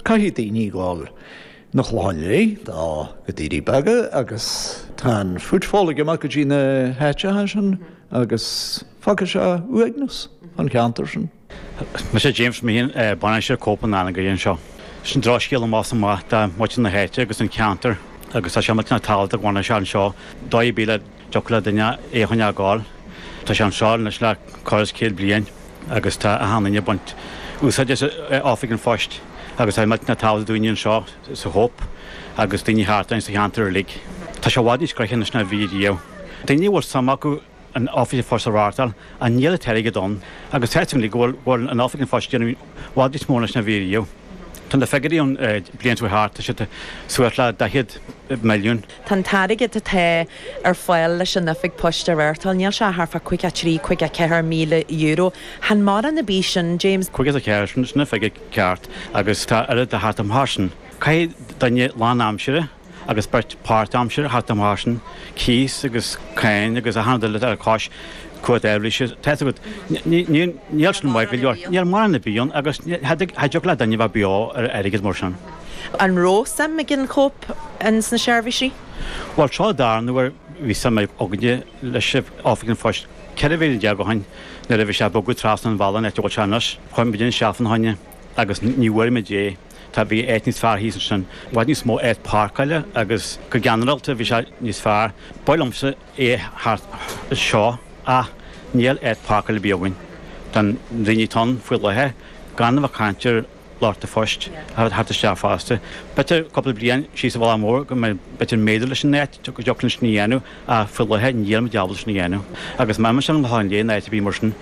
Caithfidh daoine gabháil 'na Chlocháin Léith nó go Doirí Beaga, agus tá an footfall ag imeacht go dtí na háiteacha sin agus fágfaidh sé uaigneas ins an cheantar seo. Mise James Meehan, bainisteoir Cope in Anagaire anseo. Sin drochscéal amach is amach do mhuintir na háite agus an ceantar agus tá sé iontach tábhachtach go bhfanann sé anseo. Dóigh ar bith le. Dtiocfadh le duine é a choinneáil. Tá sé anseo anois le corradh is céad bliain agus tá achan duine ag baint úsáid as Oifig an Phoist agus tá sé iontach tábhachtach do daoine anseo sa Chope agus daoine thart ann sa cheantar uilig. Tá sé i bhfad níos gnóthaí anois ná a bhí riamh. Daoine a bhfuil suim acu in Oifig an Phoist a fhreastal ach níl an t-airgead ann agus feictear dom go bhfuil an Oifig an Phoist ag déanamh i bhfad níos mó anois ná a bhí riamh. Tá na figiúirí ann bliain seo thart, tá siad suas le daichead milliún. Tá an t-airgead atá ar fáil leis an oifig poist a reáchtáil, níl sé thar fá caoga a trí, caoga a ceathair míle euro. Chan mórán ar bith sin, James. Caoga a ceathair, sin an figure ceart agus tá achan rud le theacht amach as sin. Caithfidh duine lán-aimsire agus beirt páirt-aimsire theacht amach as sin, cíos agus cáin agus achan rud eile a dtig air cosúil le cuid an solais, tá's agat. Níl sin maith go leor. Níl mórán ar bith ann agus cha dtiocfadh le duine a bheith beo ar airgead mar sin. An raibh suim ag an Chope ins na seirbhísí? Bhuel, tá ar ndóigh, bhí suim againne leis in Oifig an Phoist, 14 bhliain ó shin, nuair a bhí sé ag bogadh trasna an bhealaigh an áit a bhfuil sé anois. Chuaigh muid isteach ina choinne agus ní bhfuair muid é. Tá, bhí áit níos fearr thíos ansin, i bhfad níos mó áit páirceála agus go ginearálta bhí sé níos fearr. B'fhearr liomsa é thart anseo ach níl áit páirceála ar bith againn do na daoine atá ann faoi láthair, gan a bheith ag caint ar, Lucht an phoist a theacht isteach fosta. B'fhéidir cúpla bliain síos an bóthar go mb'fhéidir go méadóidh muid an áit go dtiocfadh linn sin a dhéanamh ach faoi láthair níl muid ábalta sin a dhéanamh. Agus má imíonn sé ar an léar in áit ar bith mar sin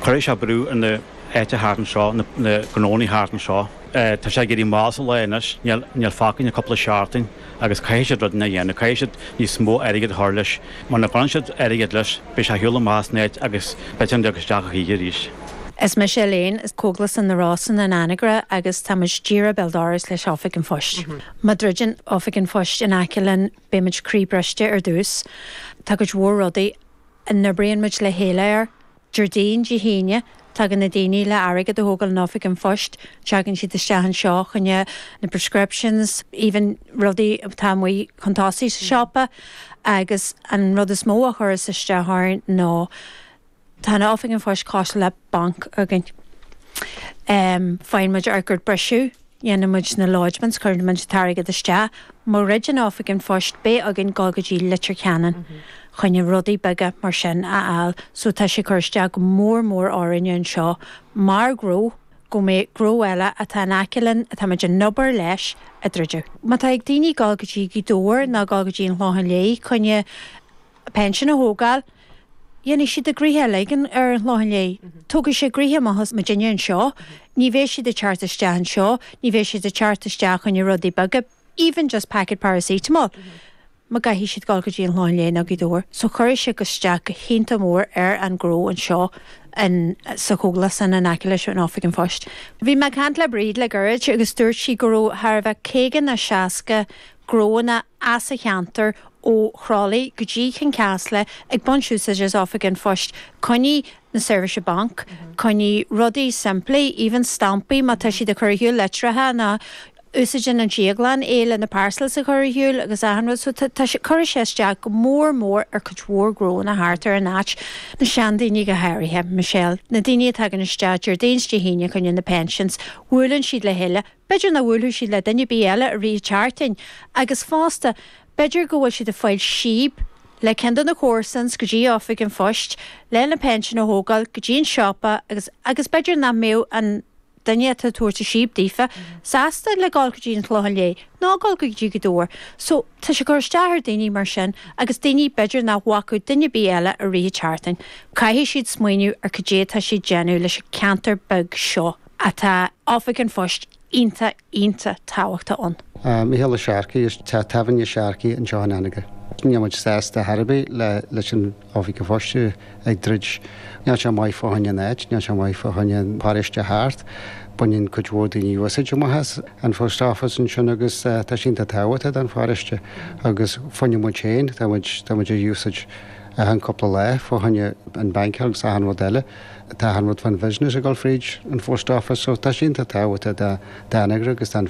cuirfidh sé brú ar na háiteacha thart anseo, na gnónaí thart anseo. Tá sé ag éirí mall sa lá anois, níl fágtha againn ach cúpla seachtain. agus caithfidh siad rudaí a dhéanamh, caithfidh siad níos mó airgid a chur leis, mura gcuireann siad airgead leis, beidh sé ar shiúl amach as an áit agus b'fhéidir nach dtig sé isteach a choíche arís. Is mise Elaine, as Cógaslann na Rosann in Anagaire agus tá muid díreach béal dorais leis Oifig an Phoist. Má dhruideann Oifig an Phoist in aice linn beidh muid croíbhriste ar dtús. Tá cuid mhór rudaí a n-oibríonn muid le chéile air. Déardaoin, Dé hAoine, tagann na daoine le hairgead a thógáil in Oifig an Phoist, tagann siad isteach anseo fá choinne na prescriptions, even rudaí atá amuigh chun tosaigh sa siopa agus an rud is mó a chuireas isteach orainn ná, tá an Oifig an Phoist cosúil le banc againn. Faigheann muid ár gcuid briseadh. Dhéanann muid na lodgements, cuireann muid an t-airgead isteach, má dhruideann Oifig an Phoist beidh againn dul go dtí Leitir Ceanainn choinne rudaí beaga mar sin a fháil so tá sé ag cur isteach go mór mór orainne anseo mar ghnó go mbeidh gnó eile atá in aice linn atá muid ag obair leis a druideadh. Má tá ag daoine dul go dtí Gaoth Dobhair ná dul go dtí an Chlochán Léith choinne a pinsean a thógáil. Dhéanfaidh siad a ngnoithe uilig ar an Chlochán Léith. Tógfaidh sé an gnoithe amach as muidinne anseo. Ní bheidh siad ag teacht isteach anseo. Ní bheidh siad ag teacht isteach chuig na rudaí beaga, even just packet paracetamol, má chaithfidh siad dul go dtí an Chlochán Léith nó Gaoth Dobhair. So cuirfidh sé isteach go hiontach mór ar an ngnó anseo in, sa chógaslann in aice leis an Oifig an Phoist. Bhí mé ag caint le Bríd le gairid agus dúirt sí go raibh thart ar b'fhéidir caoga nó seasca gnóanna as an cheantar ó Chroithlí go dtí Cionn Caslach ag baint úsáid as Oifig an Phoist, choinne na seirbhísí bainc, choinne rudaí simplí, even stampaí má tá siad ag cur ar shiúl litreacha nó úsáideann an drioglann é le na parcels a chur ar shiúl agus achan rud so tá tá sé, cuirfidh sé isteach go mór mór ar cuid mhór gnóanna thart ar an áit, na seandaoine go háirithe, Michelle, na daoine a tagann isteach Déardaoin is Dé hAoine, choinne na pensions, bhuaileann siad le chéile, B'fhéidir nach mbuailfidh siad le duine ar bith eile i rith an tseachtaine, agus fosta, b'fhéidir go bhfuil siad ag fáil síob le ceann de na comharsains go dtí oifig an phoist lena pinsean a thógáil, go dtí an siopa agus agus b'fhéidir nach mbeidh an duine atá ag tabhairt an síob daofa sásta le dhul go dtí an Chlochán Léith ná dhul go dtí Gaoth Dobhair. So, tá sé ag cur isteach ar daoine mar sin agus daoine, b'fhéidir nach bhfaca duine ar bith eile i rith an tseachtaine, caithfidh siad smaoineamh ar cad é atá siad déanamh leis an ceantar beag seo. atá Oifig an Phoist iontach, iontach tábhachtach ann. Micheál Ó Searcaigh, as teach tábhairne Sharkey's anseo in Anagaire. Níl muid sásta ar chor ar bith leis an Oifig an Phoist a bheith ag druid. Níl sé maith fá choinne an áit, níl sé maith fá choinne an pharóiste thart. Baineann cuid mhór daoine úsáid amach as an phost office ansin agus tá sé iontach tábhachtach don pharóiste agus fá choinne muid féin, tá muid, tá muid á úsáid achan cúpla lá fá choinne an banc agus achan rud eile. Tá achan rud fán bhusiness ag dul fríd an phost office so tá sé iontach tábhachtach d'Anagaire agus tá an